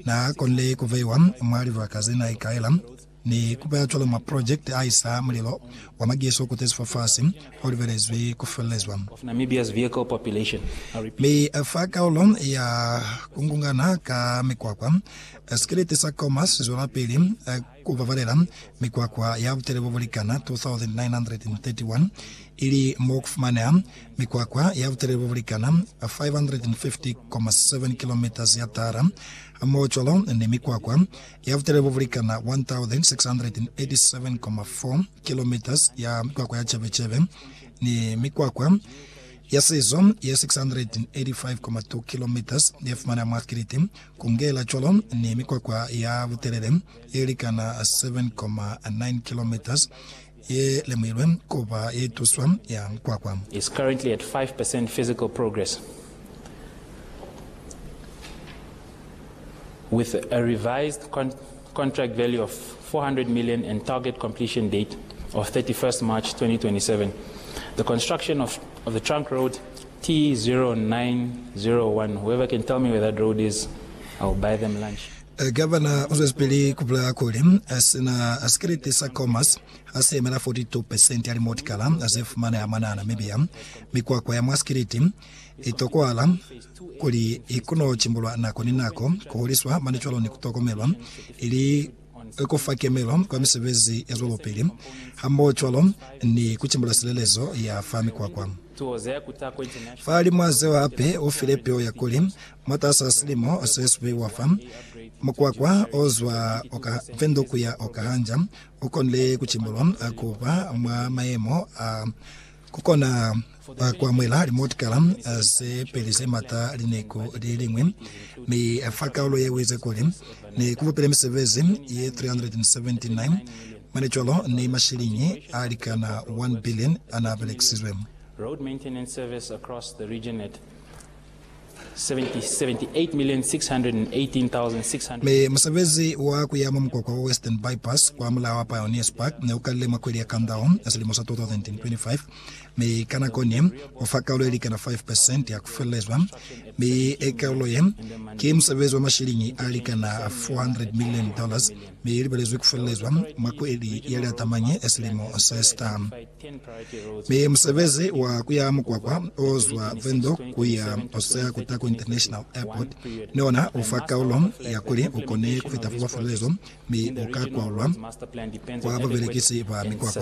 na konile ku veiwa mwa libaka ze na ikaela ni ku ba cwalo mwa project a isa mulilo wa mageso kutezi fafasi o libelezwi ku felelezwa. Mi a fa kaulo ya ku ngungana ka mikwakwa, sikiliti sa Khomas, zwelapili. Ku babalela mikwakwa ya butele bo bu likana 2,931, ili mo ku fumaneha mikwakwa ya butelele bo bu likana 550,7 kilometres ya tara, hamohocwalo ni mikwakwa ya butelele bo bu likana 1,687,4 kilometres ya mikwakwa ya cebecebe, ni mikwakwa ya sizo ye 685,2 kilometres ye fumaneha mwa Kiriti, Kungela cwalo ni mikwakwa ya butelele ye likana 7.9 kilometres ye lemuilwe kuba ye tuswa ya mukwakwa. is currently at 5 percent physical progress with a revised contract value of 400 million and target completion date of 31st March 2027. The construction of of the trunk road T0901, whoever can tell me where that road is, I will buy them lunch. Gavana o zwezipili ku bulela kuli sina sikriti sa Comas ha si yemela 42% ya limotikala ze fumaneha mwana Namibia. Mikwakwa ya mwa sikriti i tokohala kuli i kono cimbulwa nako ni nako, kuhuliswa mane cwalo ni kutokomelwa, ili kufa kemelo kwa misebezi ya zwelopili, hamoho cwalo ni kucimbula silelezo ya fa mikwakwa. Fa limwa zeo hape ufile peo ya kuli, mwatasaa silimo se supiwa fa, mukwakwa o zwa oka Vendo kuya oka Hanja ukonile kucimbulwa kuba mwa mayemo a Ku kona fa ku amuhela limotikala ze peli ze mata lineko li liñwi, mi fa kaulo ye u ize kuli, Ne ku bupile misebezi ye 379, mane cwalo ni mashiliñi a likana 1 billion a n'a belekisizwe. Mi musebezi wa kuya mwa mukwakwa wa Western Bypass kwa mulaa wa Pioneers Park ne ukalile mwa kweli ya Kandao ya silimo sa 2025, mi ka nako ni u fa kaulo yelikana 5 percent ya kufelelezwa, mi e kaulo ye ki musebezi wa mashiliñi alikana 400 million dollars, mi i libelezwi kufelelezwa mwa kweli ya Liatamanye ya silimo sesita. Mi musebezi wa kuya mukwakwa o zwa Windhoek kuya Hosea ku Taku International Airport ni ona u fa kaulo ya kuli u kone ku fita foba fulelezo mi u ka kwaulwa kwa babelekisi ba mikwakwa.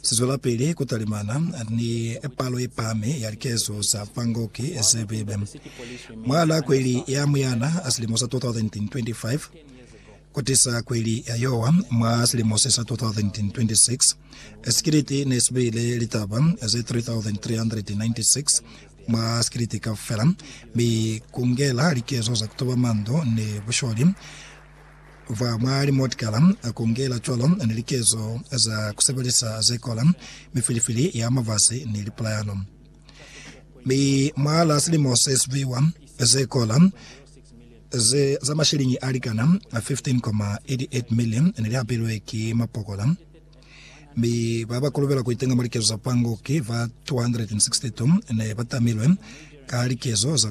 Si zwelapili ku talimana ni palo ye pahami ya likezo za Bangkok ze bibe. Mwahal'a kweli ya Muyana a silimo sa 2025, ku tisa kweli ya yowa mwa silimo se sa 2026, sikiliti ne si beile litaba ze 3,396 mwa sikiliti kaufela, mi ku ngela likezo za ku tuba mandu ni busholi, Fa mwa limotikala a kongela cwalo ni likezo za ku sebelisa ze kola, mifilifili ya mavazi ni lipulayano. Mi mwa la silimo se siviwa, ze kola ze za mashilingi a likana 15,88 million ne li apilwe ki mapokola, mi ba ba kolobela ku itenga mwa likezo za pango ki ba 262 ne ba tamilwe ka likezo za ku